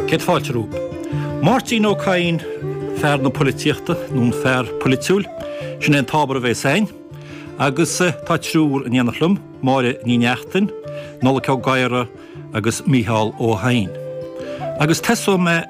Céad fáilte romhat. Máirtín Ó Cadhain fear na poilitíochta, nó an fear poilitiúil, sin é an t-ábhar a bhéas againn. Agus tá triúr in éindí liom, Máire Ní Neachtain, Nollaig Ó Gadhra agus Mícheál Ó hEidhin. Agus tosóidh mé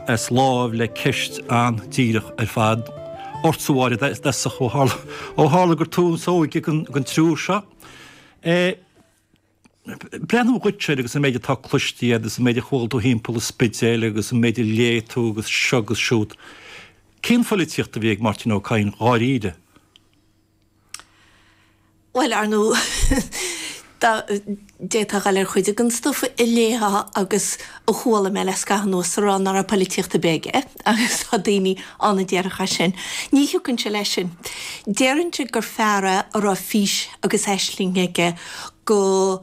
as lámh le ceist an-díreach ar fad ortsa, Mháire, is dócha, ó tharla gur tú is óige den triúr seo. breathnú duit siar agus an méid atá cloiste agus an méid a chuala tú thimpeall an Spidéil agus an méid a léigh tú agus seo agus siúd. Cén pholaitíocht a bhí ag Máirtín Ó Cadhain dháiríre? Bhuel, ar ndóigh d'fhéadfá a dhul ar chuid den stuif a léamh agus. A chuala mé le scaitheamh anuas a rá nach raibh poilitíocht ar bith aige, agus tá daoine ann a déarfadh é sin, ní thiocfainnse leis sin. Déarfainnse gur fear é a raibh fís agus aisling aige go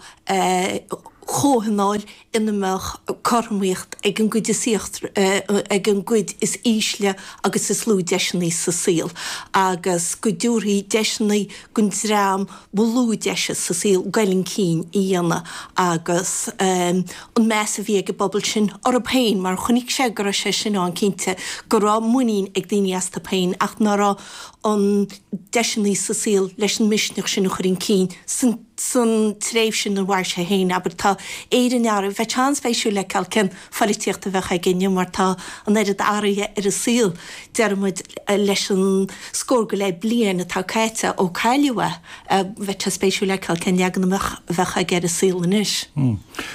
chomhthionól ina mbeadh cothromaíocht ag an gcuid is ag an gcuid is ísle agus is lú deiseanna sa saol, agus go dtabharfaí deiseanna don dream, ba lú deiseanna sa saol goil chun cinn a dhéanamh agus an meas a bhí ag an bpobal sin orthu féin mar chonaic sé go raibh sé sin ann cinnte go raibh muinín ag daoine astu féin ach nach raibh na deiseanna sa saol leis an misneach sin a chur chun cinn san tréimhse ina mhair sé féin abair dáiríre bheadh sé an-spéisiúil a fheiceáil cén pholaitíocht a bheadh aige inniu mar tá an oiread athraithe ar an saol, deir muid, leis an scór go leith bliain atá caite ó cailleadh é. Bheadh sé spéisiúil a fheiceáil cén leagan amach a bheadh aige ar an saol anois.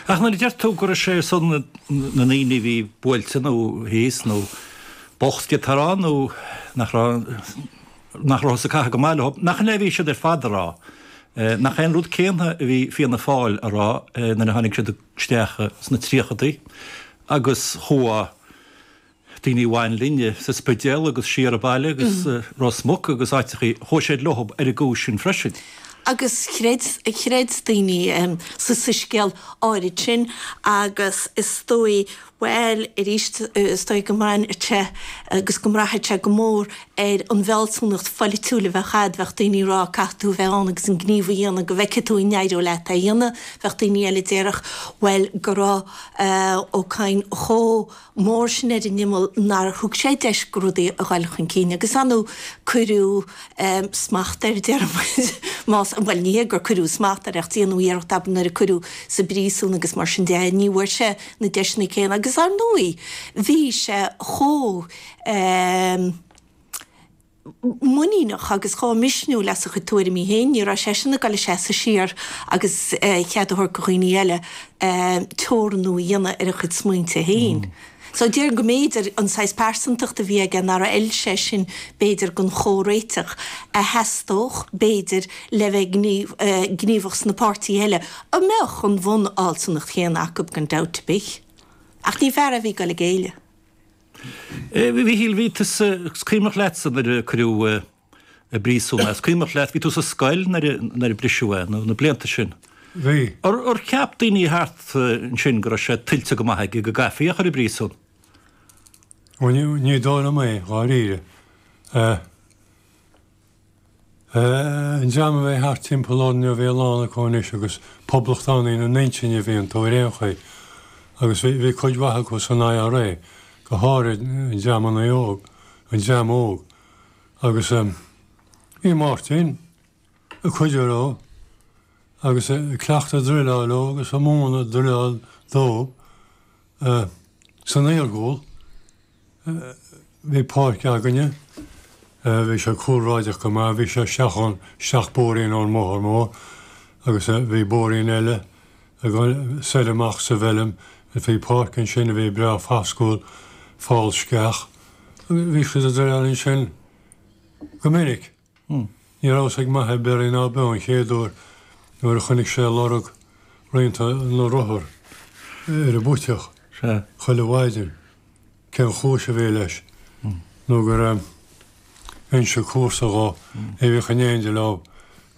Ach nuair a deir tú go raibh sé ar son na ndaoine a bhí buailte nó thíos nó bocht et cetera nó nach rabhthas ag caitheamh go maith leo, nach in é a bhí siad ar fad a rá? Nach é an rud céanna a bhí Fianna Fáil a rá nuair a tháinig siad i. isteach sna tríochadaí agus chuaigh daoine a bhain linne sa Spidéal agus siar an bealach agus Ros Muc agus áiteachaí, chuaigh siad leo ar an gcúis sin freisin. Agus chreid, chreid daoine sa soiscéal áirid sin agus is dóigh Bhuel, arís, is dóigh go mbraitheann sé, agus go mbraithfidh sé go mór, ar an bhfealsúnacht pholaitiúil a bheadh agat. Bheadh daoine a déarfadh, caithfidh tú a bheith ann agus an gníomh a dhéanamh go bhfeicfidh tú an n-éireoidh leat é a dhéanamh. Bheadh daoine eile a déarfadh, bhuel, go raibh Ó Cadhain chomh mór sin ar an imeall nár thug sé deis go rudaí a ghoil chun cinn. Agus an am ar cuireadh smacht air, deir muid, más ea. Bhuel, ní hé gur cuireadh smacht air, ach déanadh iarracht, abair, nuair a cuireadh sa bpríosún agus mar sin de é, ní bhfuair sé, na deiseanna céanna agus ar ndóigh bhí sé chomh muiníneach agus chomh misniúil as a chuid tuairimí féin, ní raibh seisean ag gabháil ag seasamh siar agus chead a thabhairt do dhaoine eile teorannú a dhéanamh ar a chuid smaointe féin. So déarfainn go mb'fhéidir an saghas pearsantacht a bhí aige nár fheil seisean b'fhéidir don chomhréiteach a theastódh b'fhéidir le bheith gníomhach sna páirtithe eile, a mbeadh an bhunfhealsúnacht chéanna acu gan dabht ar bith, ach ní fear é a bhí ag dul ag éileamh. A Mhichíl, bhí tusa, is cuimhneach leatsa nuair a cuireadh i bpríosún é, is cuimhneach leat, bhí tú sa scoil nuair a briseadh é, na blianta sin. Bhí. Ar cheap daoine thart ansin go raibh sé tuillte go maith aige go gcaithfí é a chur i bpríosún? Bhuel, ní dóigh liom é, dháiríre. An dream a bhí thart timpeall ár ndream bhí a lán acu anois agus poblachtánaí ina n-intinn a bhí iontu ar aon chaoi, agus bhí cuid mhaith acu san IRA, go háirid an dream ionaí óg, an dream óg. Agus bhí Máirtín, ag cuidiú leo, agus ag cleachtadh druileáil leo agus ag múineadh druileáil dóibh san iargúil, Bhí páirc againne. Bhí sé cúlráideach go maith. Bhí sé isteach ón, isteach bóithrín ón mbóthar mór agus bhí bóithrín eile ag gabháil soir amach sa bhfeilm. Bhí páirc ansin a bhí breá foscúil, fál sceach. Bhí siad ag druileáil ansin go minic. Ní raibh a fhios ag m'athair beirthe ná beo an chéaduair nuair a chonaic sé lorg rianta na rothar ar an bpuiteach chuile mhaidin. Cén chúis a bhí leis nó gur inis comharsa dhó é a bhíodh in éindigh leo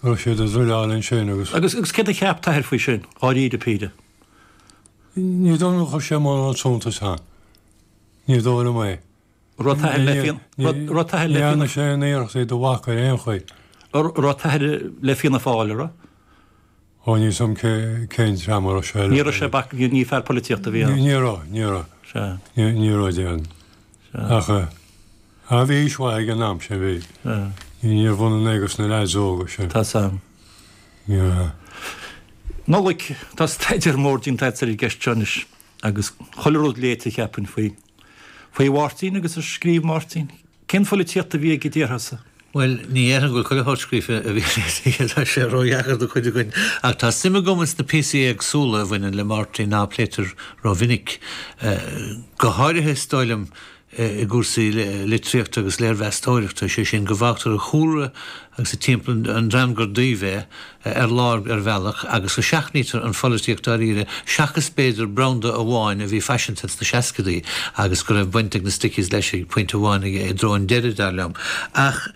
go raibh siad ag druileáil ansin agus. Agus céard a cheap t'athair faoi sin, dháiríre Píre? Ní dóigh liom gur chuir sé mórán suntais ann. Ní dóigh liom é. Raibh t'athair le Fianna Fáil. Ní dhearna sé aon iarracht iad a bhacadh ar aon chaoi. Raibh t'athair le Fianna Fáil, an raibh? Ó, níl a fhios agam cén dream a raibh sé leis. Ní raibh sé bac, ní fear polaitíochta a bhí ann. Ní raibh, ní raibh. Ní raibh de ann. Ach bhí aois mhaith aige an am sin, bhí. Níorbh ionann é agus na leaids óga sin. Tá san. Nollaig, tá staidéar mór déanta agat ar an gceist seo anois. Agus chuile rud léite, cheapfainn, faoi. faoi Mháirtín agus ar scríobh Máirtín. Cén pholaitíocht a bhí aige, déarfá-sa? Bhuel, ní dhéarfainn go bhfuil chuile shórt a scríobh Máirtín léite, tá sé ródheacair do chuid againn. Ach tá suim agam ins na píosaí éagsúla a bhaineann le Máirtín, nach bpléitear rómhinic. Go háirithe, is dóigh liom, i gcúrsaí litríochta agus léirmheastóireachta, sé sin, go bhfágtar a chúlra agus a timpeall, an dream gur díobh é, ar lár ar bhealach, agus go seachnaítear an pholaitíocht dáiríre, seachas b'fhéidir branda amháin a bhí faiseanta sna seascadaí agus go raibh baint ag na Stickies leis ag pointe amháin i dtreo an deiridh, dar liom. Ach.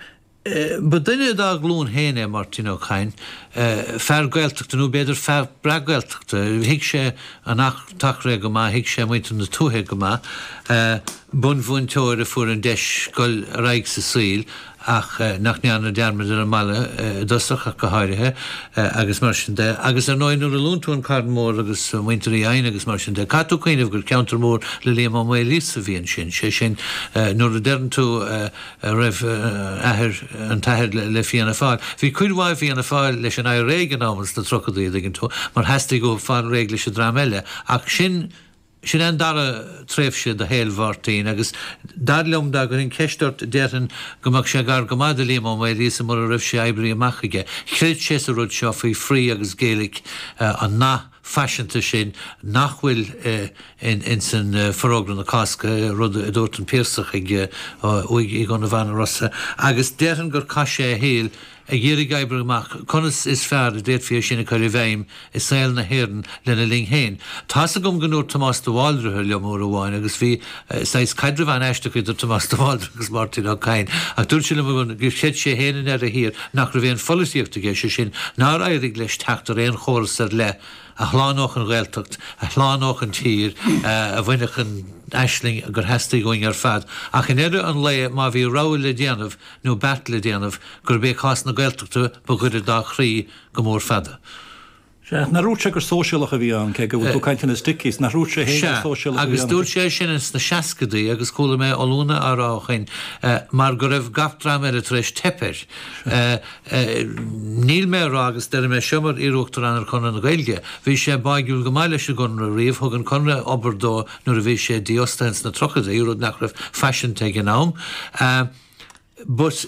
Ba duine dá ghlúin féin é Máirtín Ó Cadhain, fear Gaeltachta, nó b'fhéidir fear breacGhaeltachta. Thuig sé an tAchréidh go maith, thuig sé muintir na tuaithe go maith. Bunmhúinteoir a fuair an deis dul ar aghaidh sa saol ach nach ndearna dearmad ar an mbaile i dtosach ach go háirithe agus mar sin de. Agus ar ndóigh nuair a luann tú an Carn Mór agus muintir Uí Eidhin agus mar sin de, caithfidh tú cuimhneamh gur ceantar mór le Liam Ó Maoilíosa a bhí ansin. Sé sin nuair a deireann tú, a raibh athair an t-athair le Fianna Fáil. Bhí cuid mhaith i Fianna Fáil leis an IRA ag an am, in sna tríochadaí, an dtuigeann tú, mar theastaigh uathu fáil réidh leis an dream eile. Ach sin, sin é an dara tréimhse de shaol Mháirtín. Agus dar liom, dá gcuirfinn ceist ort, déarfainn go mbeadh sé gar go maith do Liam Ó Maoilíosa mura raibh sé oibrithe amach aige. Chreid sé sa rud seo faoi free agus Gaelic an nath. faiseanta sin nach bhfuil in san Forógra na Cásca, rud adúirt an Piarsach ag uaigh Uí Dhonnabháin Rosa agus déarfainn gur chaith sé a shaol ag iarraidh oibriú amach conas is fearr a d'fhéadfaí é sin a chur i bhfeidhm i saol na hÉireann lena linn féin. Tá's agam go ndúirt Tomás de Bhaldraithe liom uair amháin agus bhí saghas caidrimh an-aisteach idir Tomás de Bhaldraithe agus Máirtín Ó Cadhain, ach dúirt sé liom uair gur chreid sé féin ina dheireadh thiar nach raibh aon pholaitíocht aige, sé sin, nár éirigh leis teacht ar aon chóras ar leith a shlánódh an Ghaeltacht, a shlánódh an tír, a bhainfeadh an aisling gur theastaigh uainn ar fad. Ach i ndeireadh an lae, má bhí rogha le déanamh, nó beart le déanamh, gurb é cás na Gaeltachta ba ghaire dá chroí go mór fada. Sea, nach ndúirt sé gur Sóisialach a bhí ann, cé go bhfuil tú ag caint ar na Stickies, nach ndúirt sé fhéin gur Sóisialach a bhí ann? Sea, agus dúirt sé é sin ins na seascadaí, agus chuala mé ollúna á rá ó shoin, mar go raibh gach dream eile tar éis teip air. Níl mé a rá, agus deir mé seo mar iarUachtarán ar Chonradh na Gaeilge, bhí sé báidhiúil go maith leis an gConradh riamh, thug an Conradh obair dó nuair a bhí sé dífhostaithe ins na tríochadaí, rud nach raibh faiseanta ag an am. But,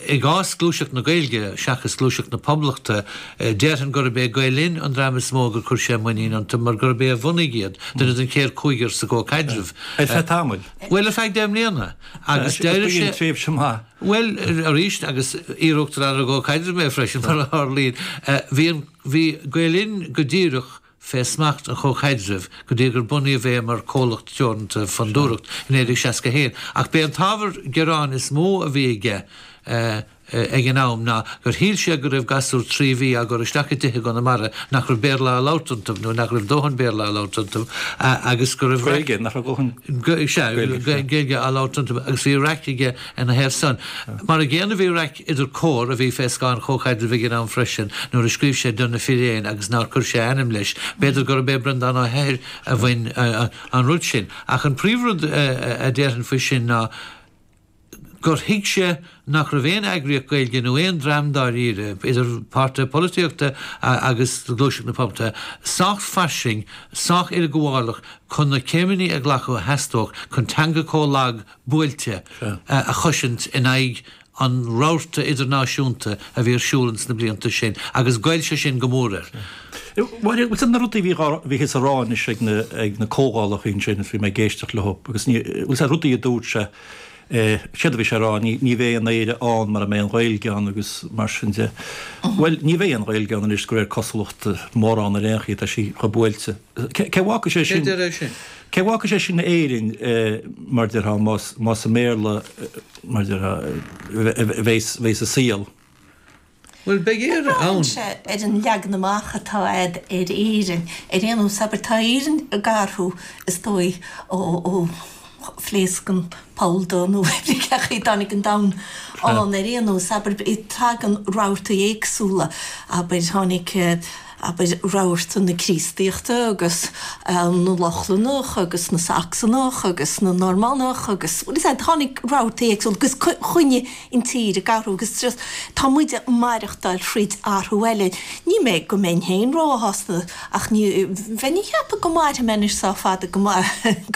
i gcás gluaiseacht na Gaeilge, seachas gluaiseacht na Poblachta, déarfainn gurb é Gael Linn an dream is mó gur chuir sé muinín iontu, mar gurb é a bhunaigh iad, duine den chéad chúigear sa gComhchaidreamh. Ar feadh tamaill. Bhuel, ar feadh deich mbliana. Agus d'éirigh sé. Ba í an tréimhse maith. Bhuel, arís, agus iarUachtarán ar an gComhchaidreamh mé freisin, mar a tharlaíonn, bhí Gael Linn go díreach, fé smacht an Chomhchaidrimh go dtí gur bunaíodh é mar chomhlacht teoranta Fondúireacht i 1961, ach b'é an t-ábhar gearáin is mó a bhí aige ag an am ná gur shíl sé go raibh gasúir trí mhí á gcur isteach i dtithe i gConamara nach raibh Béarla á labhairt iontu, nó nach raibh dóthain Béarla á labhairt iontu agus go raibh raic. Gaeilge, nach raibh dóthain Gaeilge, sea, Gaeilge á labhairt iontu agus bhí raic aige ina thaobh san. Mar an gcéanna bhí raic. idir Comhar a bhí fé scáth an Chomhchaidrimh ag an am freisin, nuair a scríobh sé do na firéin agus nár cuir sé a ainm leis. B'fhéidir gurb é Breandán Ó hEithir a bhí ann an rud sin. Ach an príomhrud a déarfainn faoi sin ná gur thuig sé nach raibh aon eagraíocht Gaeilge, nó aon dream dáiríre, idir páirtithe polaitíochta agus gluaiseacht na poblachta, sách fairsing, sách uileghabhálach chun na céimeanna a ghlacadh a theastódh chun teanga comh lag buailte a chosaint in aghaidh an rabharta idirnáisiúnta a bhí ar siúl ins na blianta sin, agus ghoill sé sin go mór air. Mhair cuid de na rudaí a bhí thíos a rá anois ag na comhdhálacha ansin is bhí mé ag éisteacht leo, agus na rudaí a dúirt sé, séard a bhí sé a rá, ní bheidh aon Éire ann mara mbeidh an Ghaeilge ann agus mar sin de. Bhuel, ní bheidh aon Ghaeilge ann anois de réir cosúlachta, mórán ar aon chaoi, tá sí chomh buailte. Cá bhfágfaidh sé sin? Cá bhfágfaidh sé sin Éirinn, mar déarfá, más i mBéarla a. mar a bheidh sa saol. Bhuel, beidh Éire ann! Braitheann sé ar an leagan amach atá agat ar Éirinn. Ar aon nós, abair, tá Éirinn ag athrú, is dóigh, ó phléasc an poll dubh nó pé ar bith cén chaoi a dtáinig an domhan ann. Ar aon nós, abair, tagann rabhartaí éagsúla, abair, tháinig. abair, rabharta na Críostaíochta agus na Lochlannach agus na Sacsanach agus na Normannach agus, bhuel, is ea, tháinig rabhartaí éagsúla agus choinnigh an tír ag athrú agus tras, tá muid ag maireachtáil thríd athrú eile. Ní mé an mbeinn féin róshásta ach ní bheinn ag ceapadh, go mairfidh mé anois sách fada go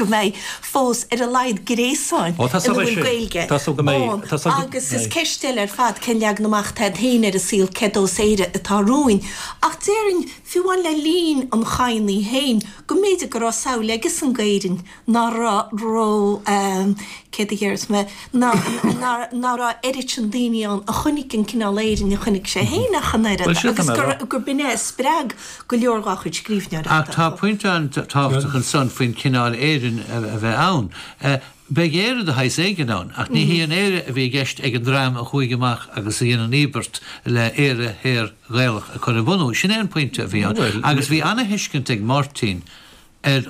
mbeidh fós ar a laghad gréasáin ina bhfuil Gaeilge ann agus is ceist eile ar fad cén leagan amach atá agat féin ar an saol, cén sórt Éire atá romhainn. Ach déarfainn, fiú amháin le linn an Chadhnaigh féin, go mb'fhéidir go raibh samhail aige san d'Éirinn ná raibh, cén chaoi a ndéarfas mé, ná raibh oiread sin daoine ann a chonaic an cineál Éirinn a chonaic sé féin ach an oiread agus gurb in é a spreag go leor dá chuid scríbhneoireachta. Ach tá pointe an-tábhachtach ansan faoin chineál Éireann a bheith ann. Beidh Éire de shaghas éigin ann, ach ní hí an Éire a bhí i gceist ag an dream a chuaigh amach agus a dhein an íobairt le hÉire Shaor Ghaelach a chur a bhunú. Sin é an pointe a bhí ann agus bhí ana-thuiscint ag Máirtín ar